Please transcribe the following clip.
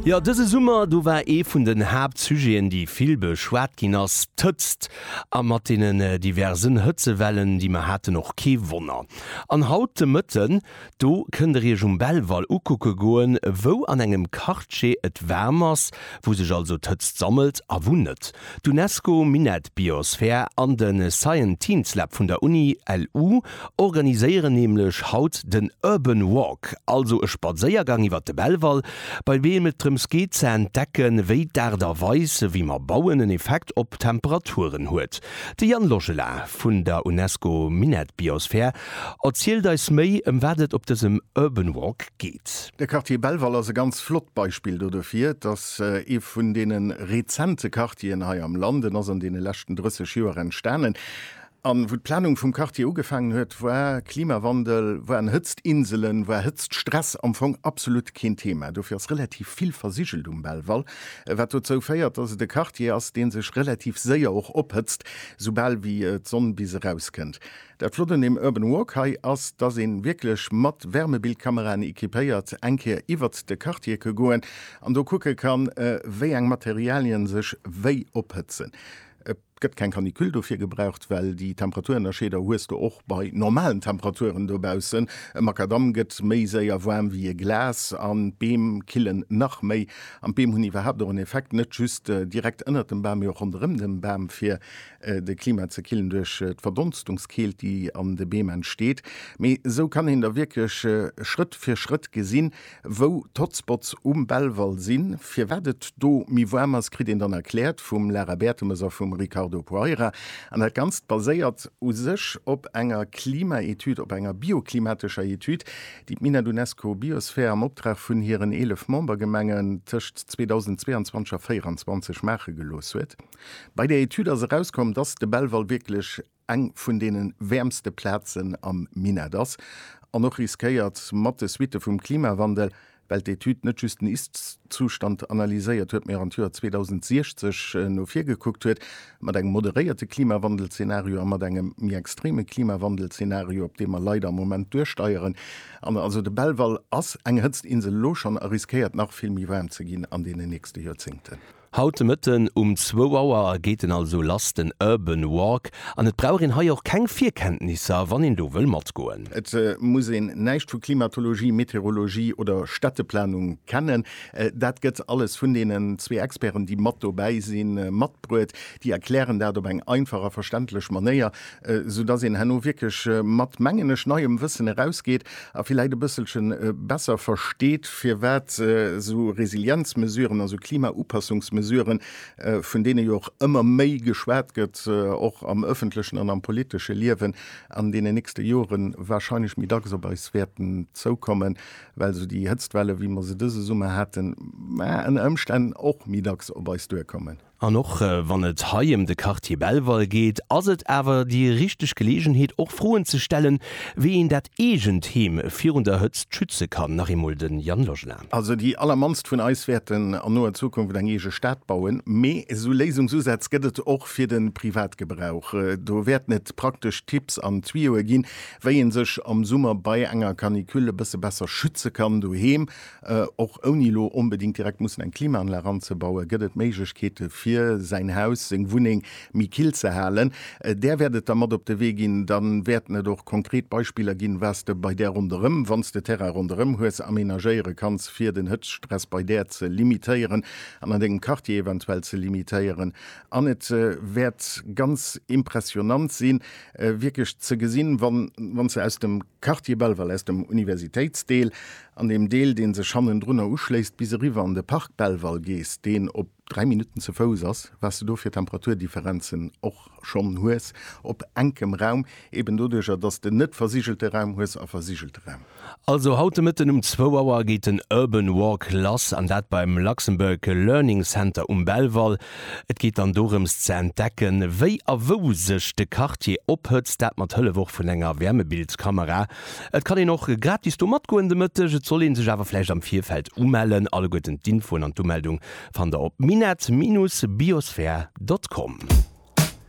Jo, dëse Summer, do war ee vun den Haaptsujeten, déi vill beschwat ginn ass, d'Hëtzt. A mat deenen diversen Hëtzewellen, déi mer haten, och kee Wonner. An haut de Mëtten, do kënnt der iech um Belval ukucke goen, wou an engem Quartier et waarm ass, wou sech also d'Hëtzt sammelt a wou net. D'Unesco Minett Biosphere an de Scienteens Lab vun der Uni LU. organiséieren nämlech haut den Urban Walk, also e Spadséiergang iwwer de Belval, bei deem et drëms geet ze entdecken, wéi d'Aart a Weis, wéi mer bauen, en Effekt op d'Temperaturen huet. De Yann Logela vun der UNESCO Minett Biosphere erzielt eis méi, ëm wat et op dësem Urban Walk geet. De Quartier Belval ass e ganz flott Beispill do dofir. Et ass ee vun deene rezente Quartieren hei am Land. En ass an deene leschten 30 Joer entstanen. An wou d'Planung vum Quartier ugefaangen huet, war Klimawandel, waren Hëtztinselen, war Hëtztstress am Fong absolut keen Thema. Dofir ass relativ vill versigelt um Belval, wat dozou féiert, dass et e Quartier ass, dee sech relativ séier och ophëtzt, soubal wéi d'Sonn bis erauskënnt. Dat Flott un deem Urban Walk hei ass, dass ee wierklech mat Wärmebildkameraen equipéiert eng Kéier iwwert de Quartier ke goen an do kucke kann, wéi eng Materialien sech wéi ophëtzen. E. Et gëtt keng Canicule dofir gebraucht, well déi Temperaturennerscheeder hues de och bei normalen Temperaturen dobaussen. E Makadamm gëtt méi séier waarm wéi e Glas an d'Beem killen nach méi. An d'Beem hunn iwwerhaapt och en Effekt, net just direkt ënnert dem Bam, mee och ronderëm dem Bam, fir de Klima ze killen duerch d'Verdonstungskeelt, déi an de Beem entsteet. Mee esou kann een da wierklech Schrëtt fir Schrëtt gesinn, Wou d'Hotspots um Belval sinn, firwat et do méi waarm ass, kritt een dann erkläert vum Lara Bertemes a vum Ricardo Poeira. An dat Ganzt baséiert u sech op enger Klimaetüd, op enger bioklimatescher Etüd, déi d'Minett UNESCO Biosphere am Optrag vun hiren 11 Membergemengen tëscht 2022 a 24 maache gelooss huet. Bei där Etüd ass erauskomm, dass de Belval wierklech. eng vun deene wäermste Plazen am Minett ass an och riskéiert, mat de Suitte vum Klimawandel, well d'Etüd net just den Ist-Zustand analyséiert huet, mee och an d'Joer 2060 no vir gekuckt huet, mat engem moderéierte Klimawandel-Zenario a mat engem méi extreme Klimawandel-Zenario, op dee mer leider am Moment duersteieren. An also de Belval ass eng Hëtztinsel elo schonn a riskéiert nach vill méi waarm ze ginn an deenen nächste Joerzéngten. Haut de Mëtten um zwou Auer geet en also lass, den Urban Walk, an et brauch een hei och keng Virkenntnisser, wann een do wëll matgoen. Et muss een näischt vu Klimatologie, Meteorologie oder Städteplanung kennen. Dat gëtt alles vun deenen zwee Experten, déi mat dobäi sinn, matbruet. Déi erklären dat op eng einfach a verständlech Manéier, esou dass een herno wierklech mat, mengen ech, neiem Wëssen erausgeet a villäit e bësselche besser versteet, firwat esou Resilienzmesuren, also Klimaupassungsmesuren, vun deene jo och ëmmer méi geschwat gëtt, och am öffentlechen an am politesche Liewen, an deenen nächste Jore warscheinlech méi dacks op eis wäerten zoukommen, well esou déi Hëtztwelle wéi mer se dëse Summer haten, ënner Ëmstänn och méi dacks op eis duerkommen. An och wann et hei em de Quartier Belval geet, ass et awer déi richteg Geleegenheet och Froen ze stellen, wéi een dat eegent Heem virun der Hëtzt schütze kann. Nach eemol de Jan Lojna. Also déi allermannst vun eis wäerten an noer Zukunft eng eege Stad bauen, mee esou Léisungsusätz gëtt et och fir de Privatgebrauch. Do wäerten et praktesch Tipps an Tuyoe ginn, wéi ee sech am Summer bei enger Canicule e bësse besser schütze kann doheem, Och ouni elo onbedéngt direkt mussen eng Klimaanlag anzebauen, gëtt et Méiglechkeete fir säin Haus, seng Wunneng méi kill ze halen. Där wäert et da mat op de Wee ginn. Da wäerten et och konkret Beispiller ginn, wat s de bei där ronderëm, wann s de Terrain ronderëm hues, amenagéiere kanns, fir den Hëtztstress bei där ze limitéieren an an dengem Quartier eventuell ze limitéieren. An et wäert ganz impressionnant sinn, wierklech ze gesinn, wann s de aus dem. Quartier Belval aus dem Universitéitsdeel an deem Deel, dee sech hannendrunner uschléisst, bis eriwwer an de Parc Belval gees, deen op 3 Minutten ze Fouss ass, wat s de do fir Temperaturdifferenzen och schonn hues op enkem Raum, eben doduercher, dass s de net versigelte Raum hues a versigelte Raum. Also haut de Mëtten um zwou Auer geet den Urban Walk lass, an dat beim Luxembourg Learning Center um Belval. Et geet dann dorëms ze entdecken, wéi a wou sech de Quartier ophëtzt, dat mat Hëllef och vun enger Wärmebildskamera. Et kann een och gratis do matgoen de Mëtteg, et soll ee sech awer vläicht am Virfeld umellen. Alleguerten d'Infoen an d'Umeldung fannt der op minett-biosphere.com.